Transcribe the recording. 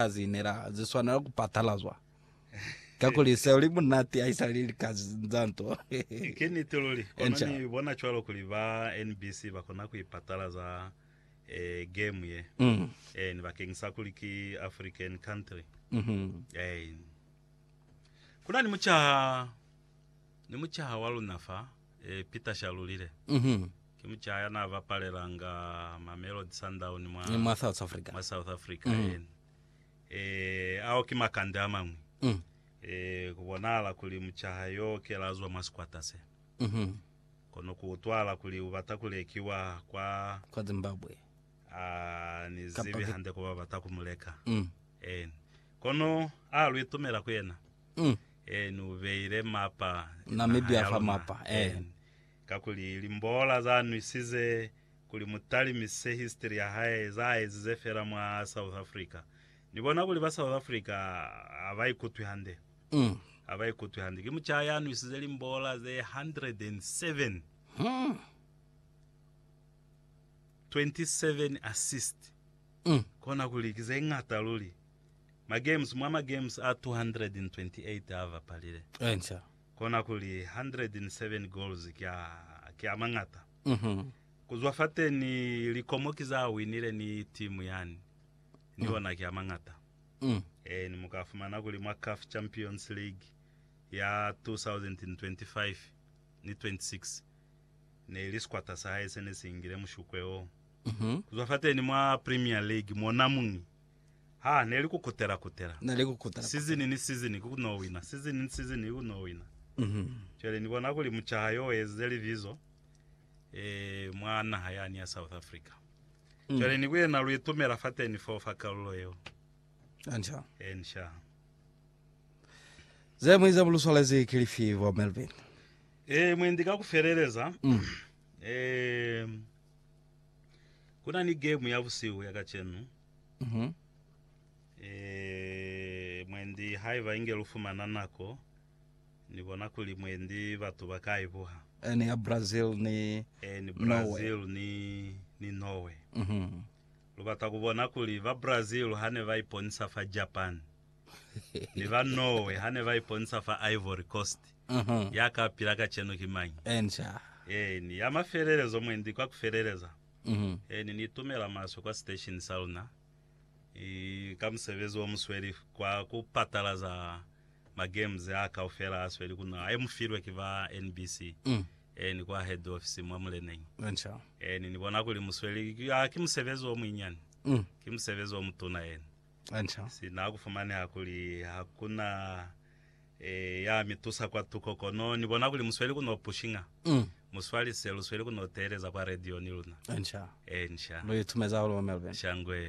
ka ze inela ze swanela ku patalazwa, kakuli seo li munati haisali lika za nto. Ki niti luli. Kono Enca. ni bona cwalo kuli ba NBC ba kona ku i patalaza eh, game ye. Mm. Ein, bakeng sa kuli ki African country. Mhm. Ein. Ku na ni mucaha Ni mucaha wa luna fa, e, Peter Shalulile. Ki mucaha ya n'a bapalelanga Mamelodi Sundown mwa, mwa South Africa, mwa South Africa yeni. E, ao ki makande a mañwi. E, ku bonahala kuli mucaha yo kela zwa mwa sikwata se. Kono ku utwahala kuli u bata ku lekiwa kwa, kwa Zimbabwe. A ni zibi hande ku ba bata ku mu leka. Eeni. Kono a lu itumela ku yena. Mm. Eh, ni ubeile mapa Na naha Namibia ya fa luna. mapa, eh. Eh, kakuli limbola za nwisize kuli mutalimise history ya hae, za ezize fela mwa South Africa. Ni bona kuli ba South Africa ha ba ikutwi hande. Mm. Ha ba ikutwi hande. Ki mucaa ya nwisize limbola ze 107, Mm. 27 assist. Mm. Kona kuli ki ze ngata luli. Magems, mwa magems a 228 a bapalile, Enca. kona kuli 107 goals ki a, ki a mañata. Mhm. Ku zwa fateni, likomo ki za winile ni timu yani, ni ona ki a mañata. Mm. Eeni, mu ka fumana kuli mwa CAF Champions League ya 2025 ni 26, ne li sikwata sa hae se ne si ingile mushukwe oo. Mhm. Ku zwa fateni mwa Premier League, mona muñi Ha ne li ku kutela kutela. Na li ku kutela Sizini kutela. ni sizini ku no wina. Sizini ni sizini ku no wina. Cwale ni bona kuli mucaha yo u ezize libizo eh, mwa naha yani ya South Africa. Cwale ni ku yena lu itumela fateni foo fa kalulo yeo. Hansha. Hansha. Ze mwi za buluswalezi ki lifi, Bo Melvin? Eh, mwendi ka ku feleleza, eh, Kuna ni game ya busihu ya kacenu. Mhm. Eh, mwendi haiba inge lu fumana nako, Ni bona kuli mwendi batu ba ka i buha. Eh, ni ya Brazil ni Eh, ni Norway. Brazil ni, ni Norway. Mhm. Lu bata ku bona kuli ba Brazil hane ba iponisa fa Japan. Ni ba Norway ha ne ba iponisa fa Ivory Coast. Ya ka pila kacenu ki mañi? Encia. Eeni, ya mafelelezo mwendi kwa kufeleleza. Eeni, ni tumela maswe kwa sitesheni sa luna ka musebezi wo mu sweli kwa ku patalaza ma games a kaufela a sweli ku naha, e mu filwe ki ba NBC. Eeni, kwa head office mwa muleneñi. Encia. Eeni, ni bona kuli mu sweli. Ha ki musebezi o muinyani, ki musebezi o mutuna. Eeni. Sina kufumaneha kuli hakuna ya mi tusa kwa tuko, kono ni bona kuli musweli ku no pushinga. Mu swalise, lu sweli ku no teeleza kwa radio ni luna. Lu itumeza hahulu mwa Melbourne. Shangwe.